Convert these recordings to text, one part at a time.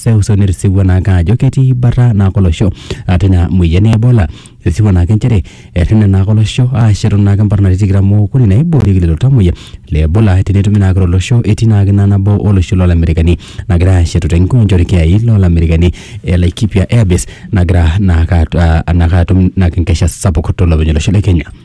seuseu netisewua naake ajo ketii bata naake olosho ah, tina moyian e Ebola. Etisewua naake nchere errene naake olosho aashetu naake mparnati tikitam ookuni naiboorieki lelo tamuoyia le Ebola tenetumi naake tolosho etii naake ina nabo olosho loo Lamerikani nagira aashetu te nkiwanja olkiyai loo Lamerikani e Laikipia Air Base nagira naake at- ah, naake atum naake enkesha sapuk tolopeny olosho le Kenya.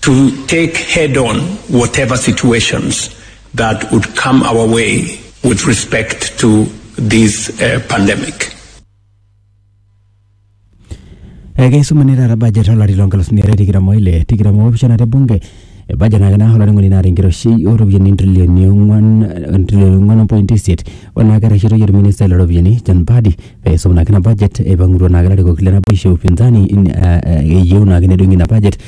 to take head on whatever situations that would come our way with respect to this uh, pandemic. ekeisumuni taata budget olari loo nkalusuni are tikitam oile tikitam oopishana te bunge e budget naa kenaa olainining'oni naata enkiroshi ooropiyiani intrilioni ong'wan intrilioni ong'wan ompoint isiet ore naa kerreshitoyie orministai looropiyiani John Mbadi pee eisum naake ina budget eipang'utua naake ilarikok le naboisho e upinzani in- eh, eh, eyieu naake nedung'i ina budget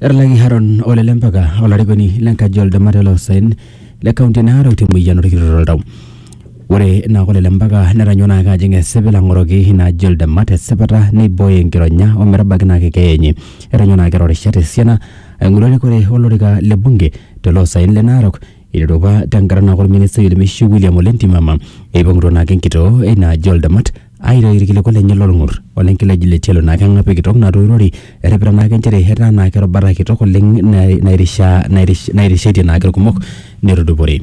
Erlaki Haron ole lempaka olarikoni lenkaji oldamat ele osaen le kaunti e Narok temueyian orkiroto oltau. Ore ina kop ele mpaka netanyua naake ajing esipil ang'oroki ina aji oldamat esipata neibooyo enkironya ometabaiki naake keeya enye. Etonyua naake eeta rishat esiana aing'oru erikore olorika le bunge tele osaen le Narok eiteru apa tenkata naake orministai Olmeishu William Ole Ntimama eipang'utua naake enkitoo eina aji oldamat aitayu irkiliku lenye lolng'ur ole nkileji le tialo naa keng'api kitok natoiurori eripita naake nchere etaa naake erubata kitok oleng nai- nairishaa nairish- nairishetie naake irkumok netudupore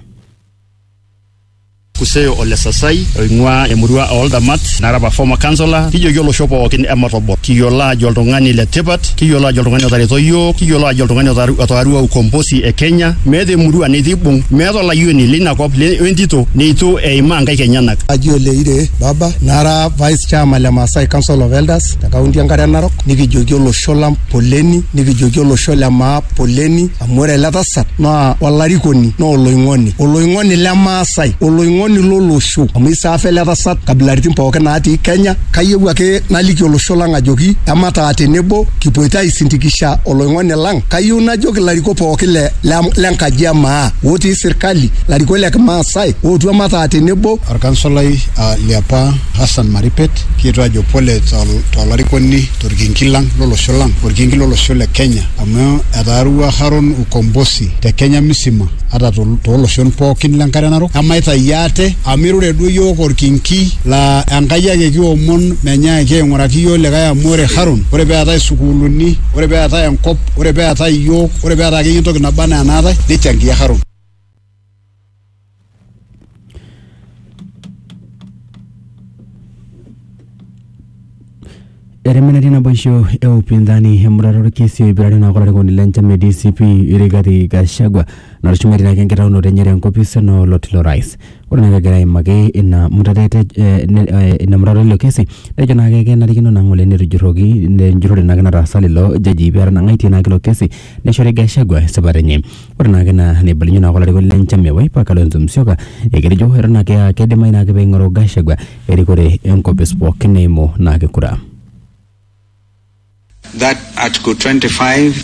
Kuseo ole Sasai oing'ua emurua o Oldamat nara apa former councillor kijoki olosho pookin ematobor kiyiolo ajo oltung'ani le tipat kiyiolo ajo oltung'ani otareto iyiook kiyiolo ajo oltung'ani otaru- otaarua ukombosi e Kenya meeta emurua netii ibung meeta olayioni leina kop le- wentito neitu eimaa nkaik enyenak Haji Oleire baba nara vice chairman le Maasai Council of Elders te kaunti enkare narok nikijoki olosho lang poleni nikijoki olosho le maa poleni amu ore ele tasat naa olarikoni naa oloing'oni oloing'oni le Maasai oloing'oni lolosho amu isaafa ele tasat kabilaritin pookin naatii Kenya kayieu ake naliki olosho lang ajoki emataa tenebo kipoito aisindikisha oloing'oni lang kayieu najoki ilarikok pookin le, le, le nkaji e maa otii sirkali ilarikok le kimaasai ootu emataa tenebo Olkansolai uh, liapa Hassan Maripet kietuo ajo pole tolarikoni to torkinki lang lolosho lang orkinki lolosho le Kenya amu etaarua Haron ukombosi te Kenya misima ata tooloshon pookin le nkare narok emaitayu ate amu irure duo iyiook orkinki laa Enkai ake kiomon menyaaki aing'uraki iyiook likae amu ore Haron ore peetae sukuuluni ore peetae enkop ore peetae iyiook ore peetae akeyie entoki naba enaa enaatae nichangia Haron. eremeneti naboisho e upinzani emurata orkesi oipirare naa olarikoni le nchama e DCP Rigathi Gachagua natushumie tinake enkitaunoto enye tenkopis ena oloti lorais ore naa pegira aimaki ina murata ete- eh, ne- eh, ina murata ilo kesi nejo naake kenarikino naa ng'ole netujurroki enjurrore naake nataasa lelo jajii petanang'aitie naake ilo kesi neshori Gachagua esipata enye. Ore naake ina neibalunyie naake olarikoni le nchama e Wiper Kalonzo Musyoka eketejo eton ake aa keidimayu naake peing'oru Gachagua erikore enkopis pookin eimu naake kura. that Article 25, 3